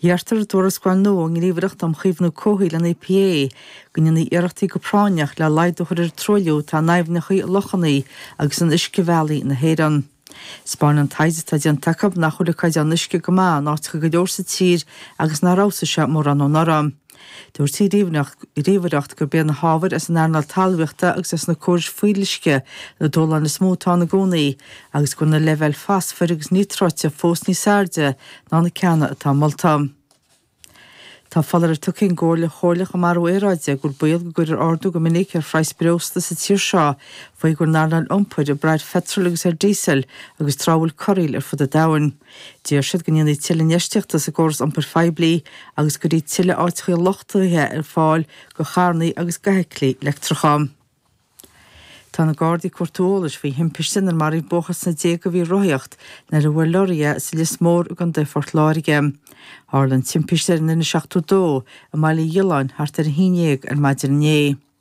Iarrtar i dtuarascáil nua ón nGníomhaireacht um Chaomhnú Comhshaoil, an EPA, go ndéanfaí iarrachtaí go práinneach le laghdú a chur ar an truailliú atá in aibhneacha, lochanna agus in uiscebhealaí na hÉireann. Thaispeáin an taighde atá déanta acu nach bhfuil an caighdeán uisce go maith in áiteacha go leor sa tír agus nár fheabhsaigh sé mórán ó anuraidh. Dúirt an Ghníomhaireacht gurb iad na hábhair as an earnáil talmhaíochta agus as na córais fuíolluisce na dúshláin is mó atá ann i gcónaí agus go bhfuil na leibhéil fosfair agus níotráite fós níos airde ná na ceanna atá molta. Tá foláireamh tugtha ag an gComhairle Chomhairleach um Athrú Aeráide go bhfuil baol go gcuirfear ardú go minic ar phraghas breosla sa tír seo faoi go bhfuil an earnáil iompair ag brath ar pheitreal agus ar díosal agus tráth a bhfuil corraíl ar fud an domhain. D'iarr siad go ndéanfaí tuilleadh infheistíochta sa gcóras iompair phoiblí agus go gcuirfí tuilleadh áiteacha luchtaithe ar fáil do charrannaí agus d'fheithiclí leictreacha. Tá na Gardaí ag cuartú eolais faoi thimpiste inar maraíodh buachaill sna déaga a bhí ag rothaíocht nuair a bhuail leoraí é sa Lios Mór i gContae Phort Láirge. Tharla an timpiste ar an N72 i mBaile Uí Ghiolláin thart ar a haon dhéag ar maidin inné.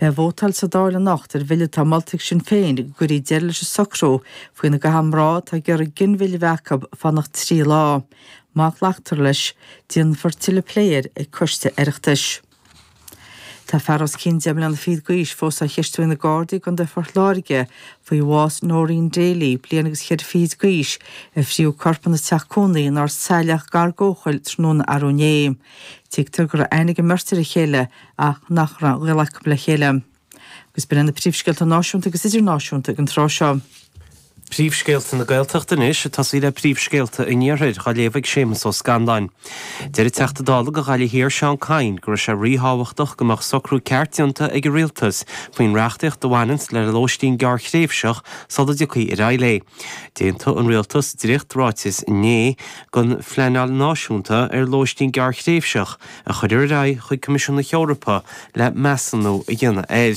Beidh vótáil sa Dáil anocht ar bhille atá molta ag Sinn Féin go gcuirfí deireadh leis an socrú faoina gcaitheann mná atá ag iarraidh ginmhilleadh a bheith acu fanacht trí lá. Má ghlactar leis, déanfar tuilleadh plé air ag coiste Oireachtais. Tá fear os cionn deich mbliana fichead d'aois fós á cheistiú ag na Gardaí i gContae Phort Láirge faoi bhás Noreen Daly, bliain agus ceithre fichid d'aois, ar frítheadh a corp ina teach cónaí in Ard Saileach gar d'Eochaill tráthnóna arú inné. Tuigtear go raibh aithne ag an mbeirt ar a chéile ach nach raibh gaol acu le chéile. Agus b'in iad na príomhscéalta náisiúnta agus idirnáisiúnta ag an tráth seo. Príomhscéalta na Gaeltachta anois ag tosaí le príomhscéalta an Iarthair á léamh ag Séamus Ó Scanláin. Deir an Teachta Dála do Ghaillimh Thiar Seán Kyne go raibh sé ríthábhachtach go mbeadh socrú ceart déanta ag an Rialtas faoin reachtaíocht a bhaineanns le lóistín gearrthréimhseach sula dtiocfaí ar aghaidh léi. D'aontaigh an Rialtas dréacht-ráiteas inné don phleanáil náisiúnta ar lóistín gearrthréimhseach, a chur ar aghaidh chuig Coimisiún na hEorpa le measúnú a dhéanamh air.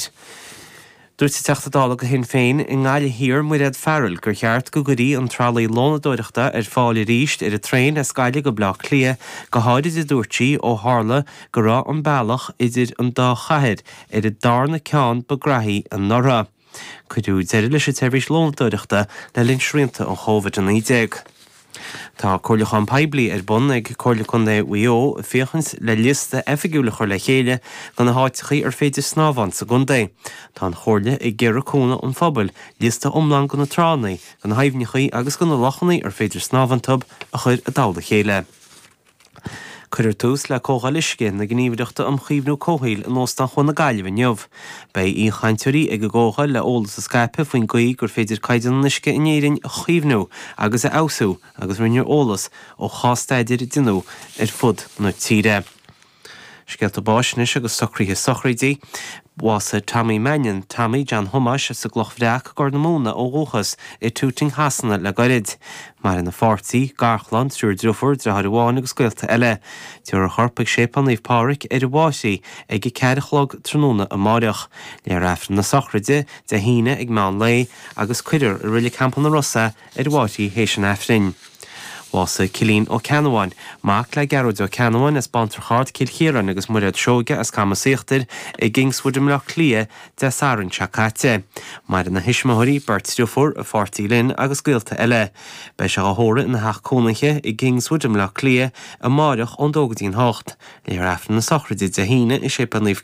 Dúirt an Teachta Dála do Shinn Féin i nGaillimh Thiar Mairéad Farrell gur cheart go gcuirfí an tralaí lónadóireachta ar fáil arís ar an traein as Gaillimh go Bleá Cliath go háirid a dúirt sí ó tharla go raibh an bealach idir an dá chathair ar an darna ceann ba graithí anuraidh. Cuireadh deireadh leis an tseirbhís lónadóireachta le linn srianta an Covid-19. Tá comhairliúchán poiblí ar bun ag Comhairle Contae Mhaigh Eo féachaint le liosta oifigiúil a chur le chéile de na háiteachaí ar féidir snámh iontu sa gcontae. Tá an Chomhairle ag iarraidh cúnamh an phobail liosta iomlán de na tránnaí, de na haibhneachaí agus de na lochannaí ar féidir snámh iontub a chur i dtoll a chéile. Cuirfear tús le Comhdháil Uisce na Gníomhaireachta um Chaomhnú Comhshaoil in Óstán Chuan na Gaillimhe inniu. Beidh aoichainteoirí ag an gcomhdháil le eolas a scaipeadh faoin gcaoi gur féidir caighdeán an uisce in Éirinn a chaomhnú agus a fheabhsú agus roinnfear eolas ó chás-staidéir a rinneadh ar fud na tíre. Scéalta báis anois agus socruithe sochraidí. Bhásaigh Tommy Mannion, Tommy John Thomáis, as an gCloch Bhreac i gCorr na Móna ó dhúchas, i dTooting Shasana le gairid. Maireann a pháirtí, garchlann, triúr driofúr, driotháir amháin agus gaolta eile. Tabharfar a chorp ag Séipéal Naomh Pádraig, ar an bhFairche, ag a ceathair a chlog tráthnóna amáireach. Léifear Aifreann na sochraide, Dé hAoine, ag meán lae, agus cuirfear i Reilig Theampall na Rosa, ar an bhFairche théis an Aifrinn. Bhásaigh Cillín Ó Ceannabháin, mac le Gearóid Ó Ceannabháin as Bantrach Ard, Cill Chiaráin agus Mairéad Seoige as Camas Íochtair i gKingswood i mBleá Cliath Dé Sathairn seo caite. Maireann a thuismitheoirí beirt deirfiúr a pháirtí Lynn agus gaolta eile. Beidh sé á thórramh ina theach cónaithe i gKingswood i mBleá Cliath amáireach ón dó go dtí'n hocht. Léifear Aifreann na Sochraide Dé hAoine i Séipéal Naomh